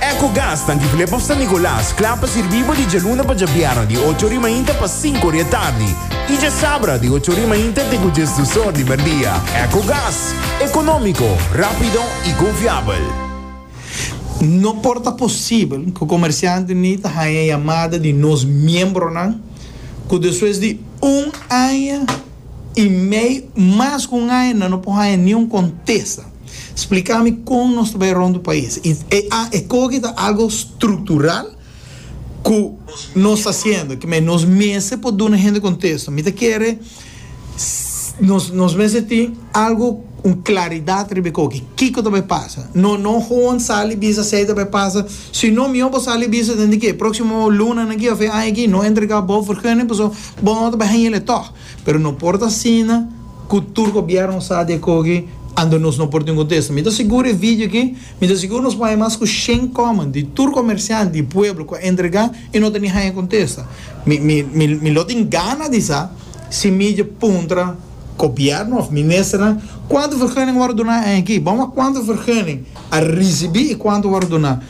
Ecogas ta difilé pa San Nicolas, kla pa sirbí bo di djaluna pa djabièrnè di ocho ori mainta pa sinku ori atardi i djasabra di ocho ori mainta te ku djes dus or di merdia. Ecogas, ekonómiko, rápido i konfiabel. No por ta posibel ku komersiante ni ta haña yamada di nos miembronan ku despues di un aña i mei mas ku un aña nan no por haña niun kontesta. Spliká mi kon nos ta bai rònt e pais. I e a e koki ta algu struktural ku nos ta hasiendo. Kibé nos mester por duna hende kontesto. Mi ta kere nos nos mester tin algu un klaridat riba e koki. Kiko ta bai pasa? No no hoon sali bisa esei ta bai pasa. Sino mihó bo sali bisa den di ke próksimo lunanan aki òf e aña aki no entregá bo vergunning pasobra bo no ta bai haña le tòg. Pero no por ta asina cu tur gobierno sa di a coge ando nos no por tin contesta. Mi ta sigur e video aki, mi ta sigur nos bay mas cu shen comment di tur comerciant di pueblo cu a entrega y no ta ni haya contesta. Mi mi mi mi lo tin gana di sa si mi dje puntra gobierno of ministernan cuanto vergunning a worde duna aña aki. Bamos a cuanto vergunning a ricibi y cuanto a worde duna.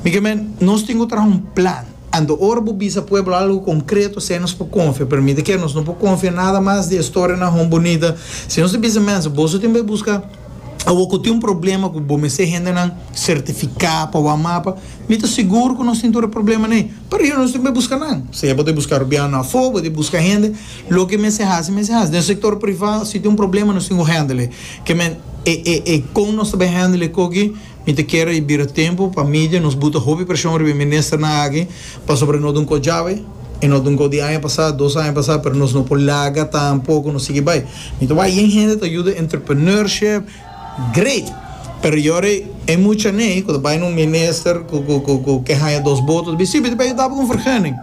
Mi ke men nos tin cu traha un plan. Anto ora bo bisa pueblo algo konkreto esei nos por konfia. Permite ke nos no por konfia nada mas di e storianan hon bunita. Si nos ta bisa mensa, boso tin bay buska awo ku tin un problema ku bo mester hendenan sertifiká pa wak mapa, mi ta sigur ku nos tin tur e problemanan ei. Pero ayier nos tin bay buska nan. Sea bo ta buska rubiano afó, bo ta buska hende, loke mester hasi, mester hasi. Den sektor privá, si tin un problema nos tin ku hendel ei. Ke men e kon nos ta bay hendel ei koki. Mi ta kere i bira tempu pa media nos buta hopi preshon riba e ministernan aki pasobra no dun kos djawe i no dun kos di aña pasá, dos aña pasá, pero nos no por laga tampoco nos sigui bai. Mi ta wak yen hende ta yuda entrepreneurship great pero yori e mucha n'ei cu ta bai na un minister cu cu cu cu ke haña dos boto's bisti bisti pa yuda bo cu un vergunning.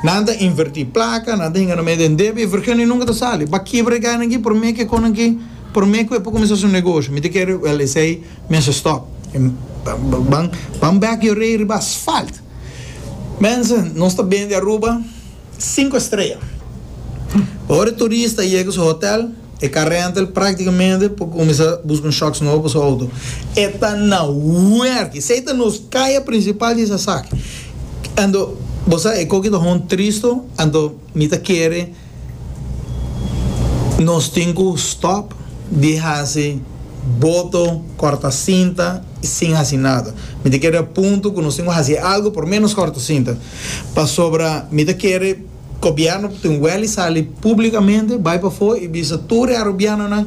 Nan ta inverti placa, nan ta hinga na medio den debe i vergunning nunca ta sali. Bakibra e gana aki prome ke con aki prome cu e por cuminsá su negoshi. Mi ta kere, wèl esei. Mense stop. Ban ban bek yo rei riba asfalt. Mense, nos ta bende Aruba sinku estrea. Pa ora e turista yega su hotel, e ka rental praktikamente por kuminsá buska un shocks nobo pa su outo. E ta na werk. Esei ta nos kaya prinsipal di esaki. Anto, bo sa e koki ta hon tristo, anto. Mi ta kere nos tin cu stop di haci boto, corta cinta y sin haci nada. Mi ta kere a punto cu nos tin cu haci algo por menos corta cinta. Pasobra mi ta kere Gobierno ta tin weli sali publicamente, bay pafo y bisa tur e Arubianonan,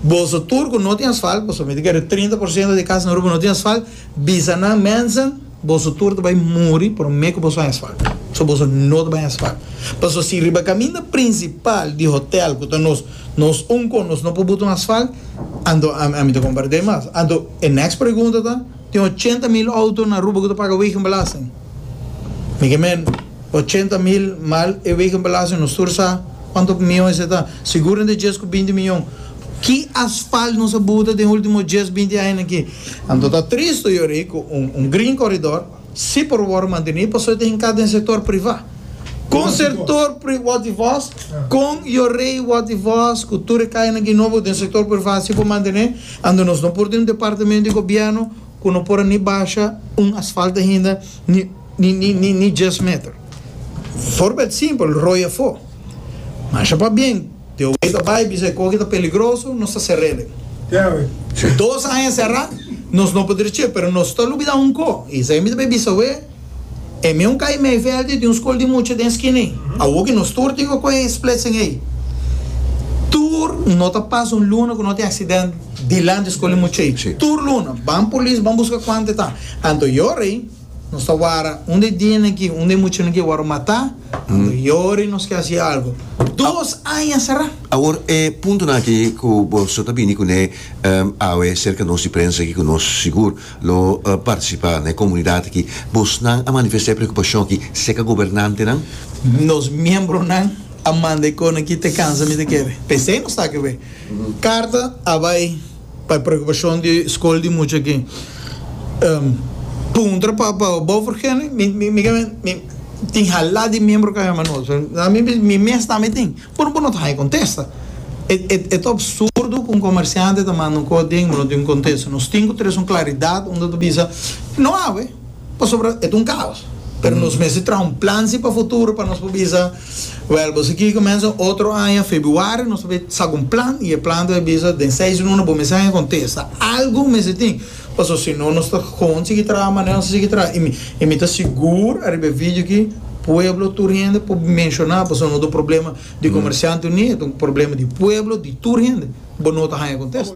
Boso tur cu no tin asfalt, pasobra mi ta kere trinta por ciento di casa na Aruba no tin asfalt, bisa nan mensen, Boso tur ta bai muri prome ku boso haña swak. So boso no ta bai haña swak. Paso si riba kaminda prinsipal di hotèl ku ta nos nos un kon nos no por butu haña swak, anto ami ta kompart'é mas. Anto e nèks pregunta ta, Tin ochenta mil outo na Aruba ku ta paga wegenbelasting? Mi ke men. Ochenta mil mal e weken palacio nos tur sa cuanto mion ese ta sigur entre dies cu binti mion ki asfalt nos a buta den ultimo dies binti aña na ki anto ta tristo yori cu un green coridor si por wordo manteni pasobra ta hinca den sector priva con sector pri word di voz con yori word di voz cu tur e caya na ki no bo den sector priva si por mantene anto nos no por tin un departamento di gobierno cu no por a ni basha un asfalt ainda ni Ni djes meter. Forbeld simpel, roi afó. Masha pabien, te oe ta bai bisa e koki ta peligroso, nos ta serele. Dos aña sera, nos no por dreche, pero nos ta lubida un ko, i esei mi ta bai bisa oe, e meu kai mei veld i tin un skol di mucha den skina ei. Awo ki nos tur tin ku kohe e splitsing ei, tur no ta pasa un luna ku no tin aksident dilanti e skol di mucha ei. Tur luna, ban polis, ban buska kuantu e ta. Anto e ora ei. Nos ta wara unda e diña nan ki, unda e muchanan ki waro matá, ando yori nos ke hasi algo. Dos aña será. Awor e puntonan aki ku bo so ta bini kuné awe serka nos di prensa aki ku nos sigur lo partisipá na e komunidat aki, bosnan a manifestá e preokupashon aki serka gobernantenan? Nos miembronan a manda e konan ki te kansa mi ta kere. P'esei nos ta aki awe. Karta a bai. Pa e preokupashon di skol di mucha aki, puntra pa bo for kende mi tin hala di miembro ku a hema nos, na mi mes mi mes tambe tin, por bo no ta haña kontesta, e ta absurdo ku un komersiante ta manda un kos den bo no tin un kontesta, nos tin ku tres un klaridat unda ta bisa no awe pasobra e ta un kaos, pero nos mester traha un plan si pa futuro pa nos por bisa. Wèl, boso kier kumensa otro aña febuario, nos tabata sa ku un plan i e plan tabata bisa den seis luna bo mester haña kontesta. Algu mester tin, pasobra si no nos ta kon sigui traha manera nos a sigui traha. I mi i mi ta sigur ariba e video aki pueblo tur hende por menshoná pasobra no ta un problema di Comerciante Unido, ta un problema di pueblo, di tur hende. Bo no ta haña kontesta.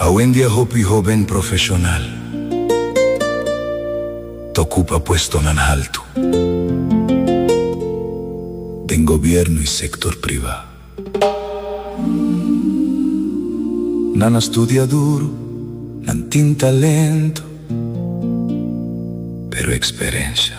Awendia hopi hoben profeshonal ta okupa puestonan haltu den gobièrnu i sektor privá. Nan a studia duru, nan tin talentu, pero eksperensha.